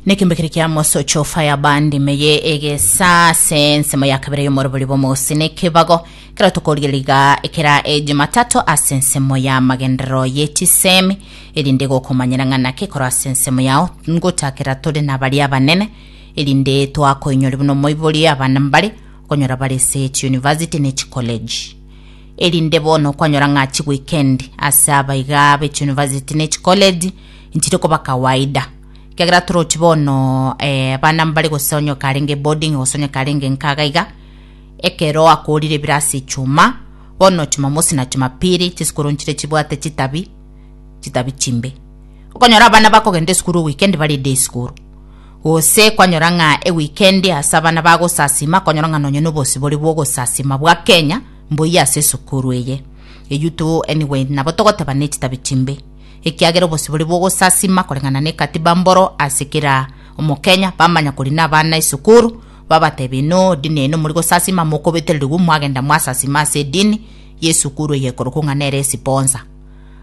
nekimbekire kia mosocho fire band meye egesa se nsemo ya kabere yomorobori bomosi nekebago kero tokorigeriga ekera ejimatato ase nsemo ya magenderero yetisemi erinde gokomanyera ng'ana kekoro ase nsemo yao ngotakera tore na baria abanene erinde twakoinyori buna omoibori abana mbare okonyora bare ase chiuniversity ne chikoleji erinde bono kwanyora ng'a chiweekend ase abaiga be chiuniversity ne chikoleji Nchire koba kawaida, ekiagera torochi bono eh, abana mbare gose onye okarenge boarding gose onye karenge nkaga iga ekero akorire ebiro ase echuma bono chumamosi na chumapili chisukuru nchire chibwate chitabi chitabi chimbe okonyora abana bakogenda esukuru weekend bare day school gose kwanyora ng'a eweekend ase abana bagosasima konyora ng'a nonye na obosi bore bwa ogosasima bwa kenya mboiyo ase esukuru eye eyuto anyway nabo togoteba ne chitabi chimbe ekiagera obosibore bw'ogosasima koreng'ana n'ekatiba mboro ase kera omokenya bamanya korina abana esukuru babatebie no dini yaino mori gosasima mokobetererigwe mwagenda mwasasima ase edini yesukuru eye ekorokwa ng'a nere esiponsa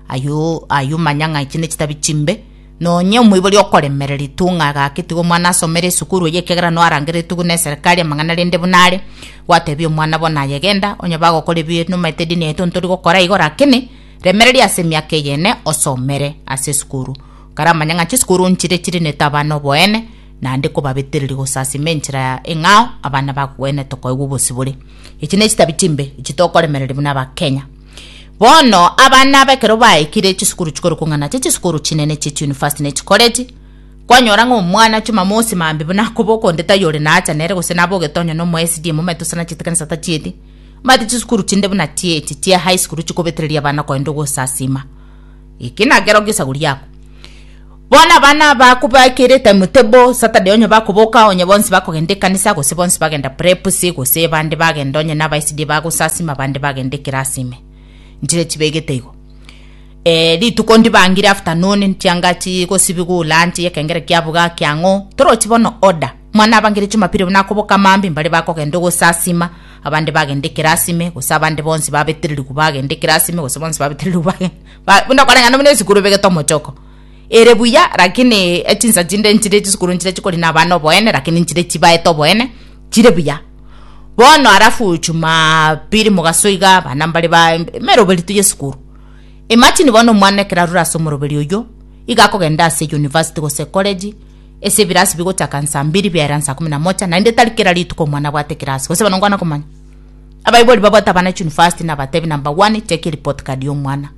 ayio ayio manya ng'a echi nechitabi chimbe nonye omoibori okoremereri tu ng'a gaki tiga omwana asomere esukuru eye ekiagera no arangeretwe buna eserikari amang'ana rende buna are gwatebia omwana bono aye genda onye bagokora ebi nomaete edini yaito ntori gokora igo rakini Remereria ase emiaka eyene osomere ase esukuru. Karamanya ng'a chisukuru nchire chirinete abana oboene, naende kobabetereria gosasima enchera eng'ao abana bakogenda tokoigwa obosibore. Echi nechitabi chimbe echi tokoremereria buna abakenya. Bono abana aba ekero baikire chisukuru chikorokwa ng'a nache chisukuru chinene chie chiunifasti ne chikoreti, kwanyora ng'a omwana chumamosi maambia buna akoboka onde taiyo ore naacha nere gose nabogetwe onye na omo SDA momanyete gose nachiete ekanisa tachieti, Omanyete chisukuru chinde buna chi'echi chia high school chikobetereria abana koenda ogosasima. Eki nakero gesagu riago. Bono abana aba kobaekera etime table, Saturday onye bakoboka onye bonsi bakogenda ekanisa gose bonsi bagenda preps gose bande bagenda onye naba SDA bagosasima bande bagenda ekerasi ime. Nchire chibegete igo. Eh, rituko ndibangire afternoon, chianga chigosibigwa lunch, ekengere kiabuga kiang'o, torochi bono order. Omwana abangire Jumapili buna akoboka amaambia mbare bakogenda ogosasima, abande bagende ekero asime, gose abande bonsi babetererigwe bagende ekero asime, gose bonsi babetererigwe bagende ba- buna okwareng'ana buna esukuru ebegete omochoko. Ere buya, lakini echinsa chinde nchire chisukuru nchire chikorina abana oboene, lakini nchire chibaete oboene, chire buya. Bono alafu Jumapili mogaso iga abana mbare ba emeroberio tu y'esukuru. Imagine bono omwana ekero arure ase omoroberi oyio, iga akogenda ase university gose ecollege, Ase ebirasi bigochaka nsa mbiri biaera nsa ikomi na mocha, naende tari kera rituko omwana abwate ekirasi, gose bono nkwana komanya. Abaibori babwate abana chunifasti nabatebi number one cheki report card ya omwana.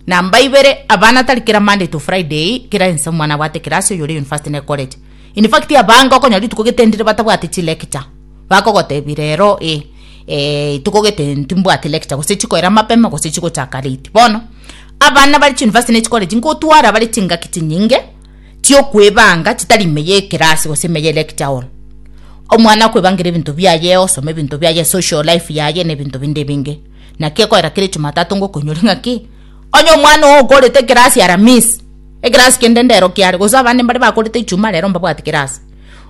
Namba ibere, abana tari kera Monday to Friday kera ense omwana abwate ekirasi oyo ore yunifasti na ecollege. In fact abange okonyora rituko gete ndire batabwati chilecture, bakogotebi rero eh eh rituko gete ntimbwati lecture gose chikoera mapema gose chigochaka late. Bono abana bare chunifasti na echicollege nkotwara bare chingaki chinyinge. chi'okwebanga chitari ime y'ekerasi gose ime ye lecture hall. Omwana akwebangera ebinto biaye, osoma ebinto biaye, social life yaye na ebinto binde ebinge. Naki ekorera kera Jumatatu ngokoinyore ng'a ki? Onye omwana oo okorete ekerasi Aramisi, ekerasi kende ndero kiare, gose abande mbare bakorete Ijumaa rero mbabwati kerasi.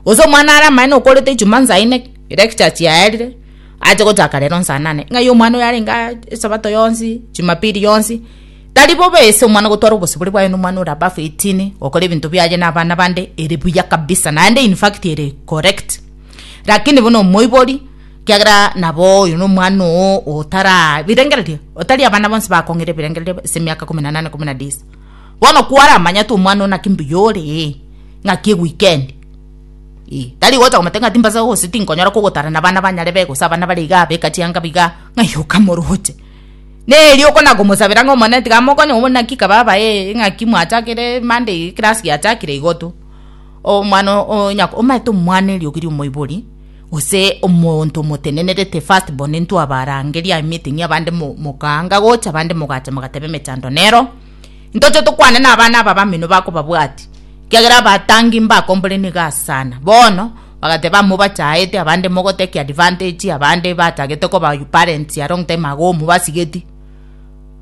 Gose omwana are amaene okorete Ijumaa nsaa ine lecture chiaerire, ache gochaka rero nsaa nane. Ng'ai omwana oyo arenge aa esabato yonsi, Jumapili yonsi. Tari bobe ase omwana gotwara obosibore bwaye nomwana ore above 18 gokora ebinto biaye na abana bande ere buya kabisa naende in fact ere correct lakini buna omoibori kiagera nabo oyo nomwana oo otara birengererio otari abana bonsi bakong'ira ebirengererio ase emiaka kumi na nane kumi na disa bono kwaramanya tu omwana oo naki mbuya ore ee ng'aki ewikendi ee tari gocha komotebia ng'a timbasa gose tinkonyara kogotara na abana banyare be gose abana bare igaa beka chianga igaa ng'ai okamoroche Neri oko na komosabera ng'a Omonene tiga amokonye, obo naki kaba aba ee ng'aki mwachakire mande eye class giachakire igo to. Omwana o nyako omanyete omwana erio keria omoibori gose omonto omotenenerete first born intwe abarangeria meeting abande mo mokaanga gocha abande mogacha mogateba emechando nero. Ntoche tokwane nabana aba bamino bakobabwati, kiagera abatangi mbakombore nigo ase sana. Bono bagateba amo bachaete abande mogo take advantage abande batagete koba you parents a long time ago mobasigeti.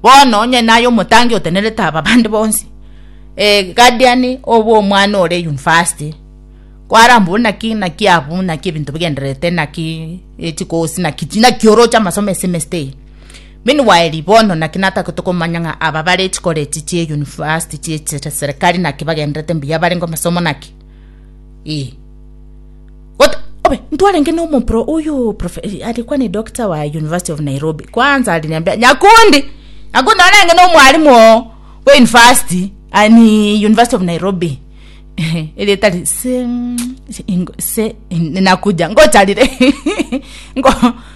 Bono onye naye omotangi otenerete aba bande bonsi eh guardian obo omwana ore university kwarambwo naki naki abu naki ebinto bigendererete naki echikosi naki naki oroche amasomo esemester eye. Min. Waeli, Bono naki natagete komanya ng'a aba bare chikoreti chie yunivasiti chie chiserikari naki bagenderete mbuya barenge amasomo naki? Ee. Gota, obe, ntwarenge nomopro oyo prof, arikwa ne doctor wa University of Nairobi. Kwanza aliniambia, Nyakundi, Nyakundi narenge nomwalimu oo bwa yunivasiti, ah, ni University of Nairobi. Eretari se, se, ingo- se, nakuja, ngocharire. Ngo-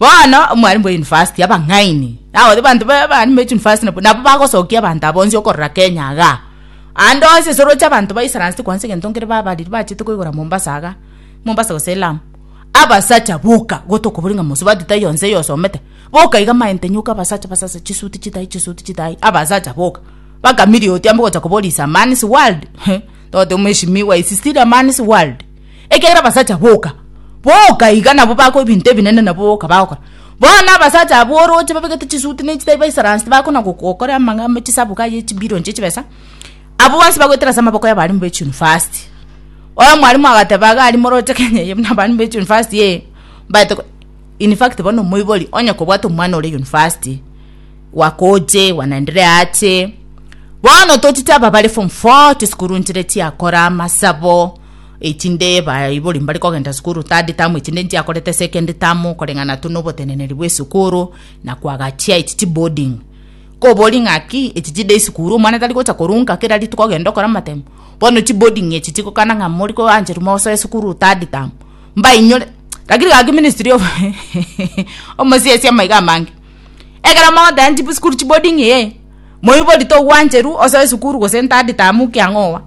Bono omwarimu bwa university abang'aini nabo abanto ba- bari mu university nabo nabo bagosokia abanto aba onsi okorora kenya igaa ande onsi ase oroche abanto ba islands kwansa egento nkere babarire bachete koigora mombasa igaa mombasa gose lamu abasacha boka igo tokobori ng'a mosubati taiyo nse iga osomete boka iga maente nyoka abasacha basase chisuti chitai chisuti chitai abasacha boka mpaka milioti amo ogocha kobori is a man's world heh toteba mweshimiwa is still a man's world. ekiagera abasacha boka boka iga nabo bagokora ebinto ebinene nabo boka bagokora bono abasacha abwo oroche babegete chisuti na echitai baisaransi tibakona gokora amang'ama chisaboka aye chibilion chia chibesa abwo bonsi bagoetera ase amaboko y'abalimu ba echunivasti omwalimu agateba iga aria moroche kenya eye buna abalimu ba echunivasti ee mbaete ko in fact bono omoibori onye kobwate omwana ore yunivasti wakoche wanaendelea ache bono tochite aba bare form four chisukuru nchire chiakora amasabo. Echinde baibori mbare kogenda sukuru tade tamu echinde nchiakorete ase ekende tamu koreng'ana tu noboteneneri bw'esukuru na kwagachia echi chiboarding kobori ng'aki echi chide esukuru omwana tari gocha korunka kera rituko ogende okore amatemo bono chiboarding echi chigokana ng'a mori koancherwa mosoe sukuru tade tamu mbainyore lakini gaki ministry of omosiasi amaiga amange ekero mogoteba chibu sukuru chiboarding ee moibori togwancheru osoe sukuru gose tade tamu kiang'owa.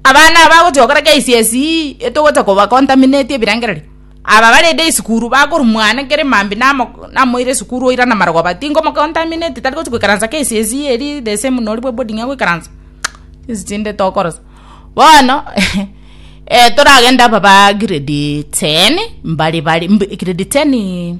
Abana aba bagochia gokora KCSE etogocha koba contaminate ebirengererio. Aba barende esukuru bakorwa mwane kere mambia namo namoire esukuru oira namarogo but tingo mo contaminate tari gochia goikaransa KCSE eria the same nori bwa boarding agoikaransa chinsi chinde tokorosia. Bono toragende aba ba grade ten mbare bare grade ten.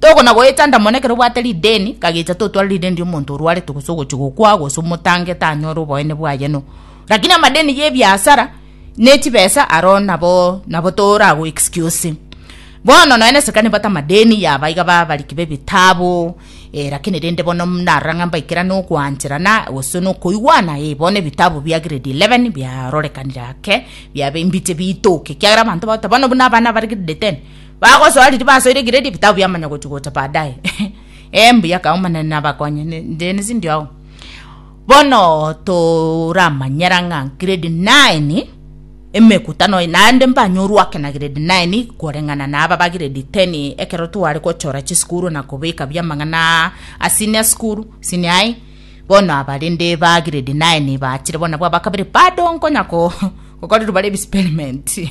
Tokona goetanda mono ekero obwate rideni, kagecha totware rideni riomonto orwarete gose ogochia gokwa gose omotangete anyore oboene bwaye no. Lakini amadeni y'ebiasara ne chibesa aro nabo nabo tora go excuse. Bono nonya na eserikari nibato amadeni yaba iga ba abariki b'ebitabu eh lakini rende bono narora ng'a mbaikerane okoancherana gose na okoigwana eh bono ebitabu bia grade eleven biarorekanire ake biaba embiche bitoke ekiagera abanto bagote bono buna abana bare grade ten. Bagosoa riria basoire Gileadi ebitabu biamanya gochia gocha baadaye. Ee mbuya kau Omonene nabakonye. Ne- Ndene sindio ao? Bono toramanyera ng'a grade 9 emekutano eye naende mbanyorwa ake na grade 9 koreng'ana na aba ba grade 10 ekero tware gochora chisukuru na kobeka biamang'ana a senior school, senior high, bono aba rende ba grade 9 baachire bono nabwo abakabere bado nkonya ko- gokorerwa bare ebisperimentii.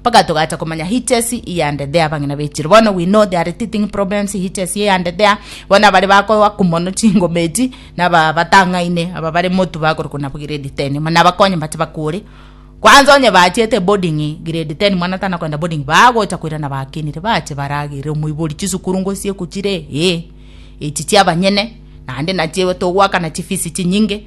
Mpaka togacha komanya hitches iyande there abang'ina bechire bono we know there are teething problems hitches iyande there bono abare bakoaku mono chingoma echi naba batang'aine aba bare motu bakorokwa nabo grade 10 muna bakonye mbache bakure kwanza onye bachete boarding grade 10 mwana tana koenda boarding bagocha koirana bakinire bache baragere omoibori chisukuru ngosie kuchire ee echi chiabanyene naende nachio togoakana chifisi chinyinge.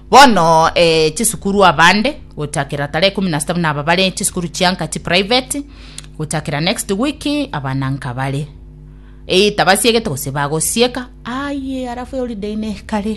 Bono eh, chisukuru abande gochakera tarehe ikumi na sita buna aba bare chisukuru chianka chi private gochakera next week abana nkabare eh, tabasiegete gose bagosieka aye arafu holiday ne kare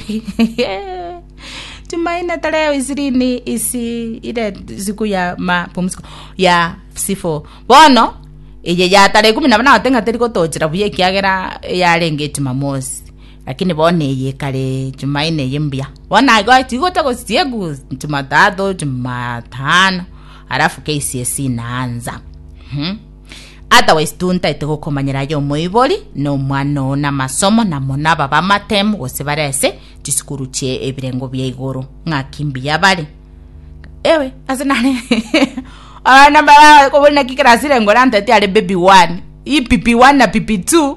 Jumanne tarehe ishirini isi ile siku ya mapumziko ya sifo bono eye ya tarehe ikumi na bana gote ng'a teri gotochera buya ekiagera yarenge Jumamosi Lakini bono eye ekare Echumaine eye mbuya, bono agoeta igo otagosiria Echumatatu, Echumatano, alafu keisia esina ansa. Mhm. Otherwise tuntaete gokomanyera aye omoibori na omwana oo na amasomo na mono aba bamatemu gose bare ase chisukuru chie ebirengo bia igoro ng'aki mbuya bare ewe ase nare abana bara kobuna ki class rengo rantaete are baby one i pipi one na pipi two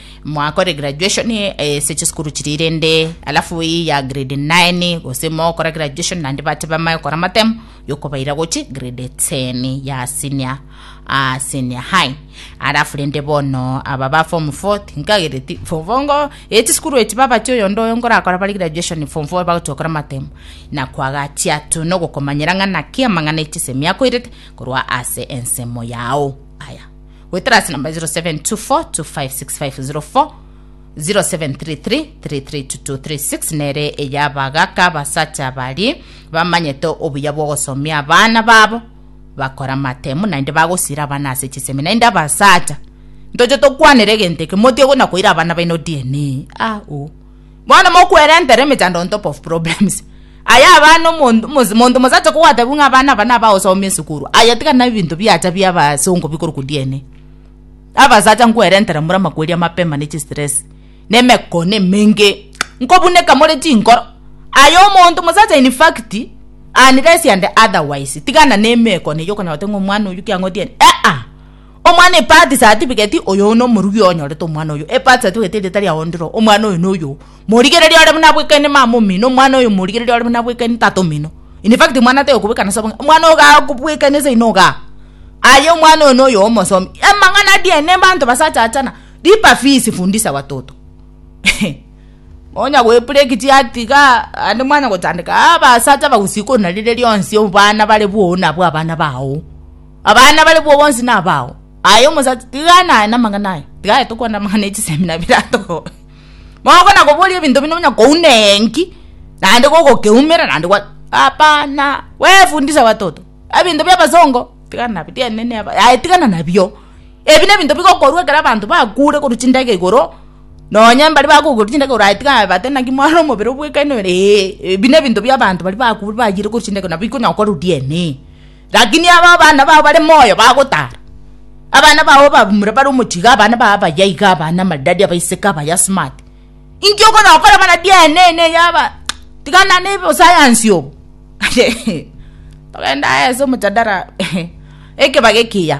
mwakore graduation ase chisukuru chiria rende alafu eye ya grade 9 gose mogokora graduation naende bate bamae gokora amatemo yokobaira gochi grade 10 ya senior ah, senior high alafu rende bono aba ba form 4 tinkagereti form 4 ngo eye chisukuru echi babati oyondo oyo ngorakora bare graduation form 4 bagochi gokora amatemo na kwagatia tu nogokomanyera ng'a naki amang'ana echisemi akoirete korwa ase ensemo yao aya Goetera ase namba 0724256504 0733332236 nere eya abagaka abasacha baria bamanyete obuya bw'ogosomia abana babo bakora amatemu naende bagosira abana ase chisemi naende abasacha ntoche tokwanera egento eke motige buna koira abana baino dna ah, oh. Bono mokwerentera emechando on top of problems. Aye abana omonto omonto mosacha kogotebu ng'a abana aba naba osomia esukuru. Aye tiga na ebinto biacha bia abasongo bikorokwa DNA. Abasacha nkwerentera more amakweri amapema ne chistress na emekone emenge. Nkobuneka more chinkoro. Aye omonto mosacha in fact unless and otherwise tigana na emekone eyio okonyora gose ng'a omwana oyio kiang'otie ah ah. Omwana Epati satibigeti, Oyoo nomorugi onyorete omwana oyoo. Epati satibigeti erieta riao ndiro, Omwana oyo noyoo. Morigereria ore buna bwekaine mama omino, omwana oyo morigereria ore buna bwekaine tata omino. In fact omwana ataiyo kobwekana ase obong'aini, omwana oyo igaa kobwekania ase ino igaa. Aye omwana oyo noyoo omosomi. Amang'ana a DNA abanto basachachana, lipa fees fundisha watoto ehe. Onya goebreak chiati igaa naende mwanya gochandeka abasacha abagusii korwa nari rionsi obana bare boo nabwo abana bago. Abana bare bwo bonsi nabao. Aye omosacha, tiga naye namang'ana aye. Tiga aye tokwane amang'ana echisemina biratogo. Mogokona koboria ebinto bino nonya kouna enki, naende gogokeumera naende gwa hapana. Wefundisha watoto. Ebinto bia abasongo, tiga nabio tiende ne aba. Aye tigana nabio. Ebi nebinto bigokorwa ekero abanto bakure korwa chindagera igoro, nonya mbare bakokigwa chindagera igoro aye tiga babate naki mwarore omobere obwekaine ore ee. Ebi nebinto bia abanto baria bakure bayire korwa chindagera nabo bikonya gokorwa DNA. Lakini aba abana bao bare moyo bagotaara. Abana bao ababamura bare omochiga, abana bao abayaiga, abana amaridadi, abaiseke abayasmati. Inki okonokora mana DNA ene yaba tigana ne osayansi obo. Togende ase omojadara ekebaga ekiya.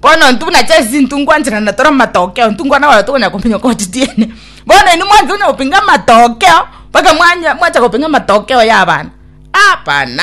Bono intwe buna chesisi intwe ngwanchera na tore amatokeo intwe nkwana bare tokonyara komenya koti tiene bono inwe mwancha konya gopinga amatokeo mpaka mwanya mwancha gopinga amatokeo ya abana abana.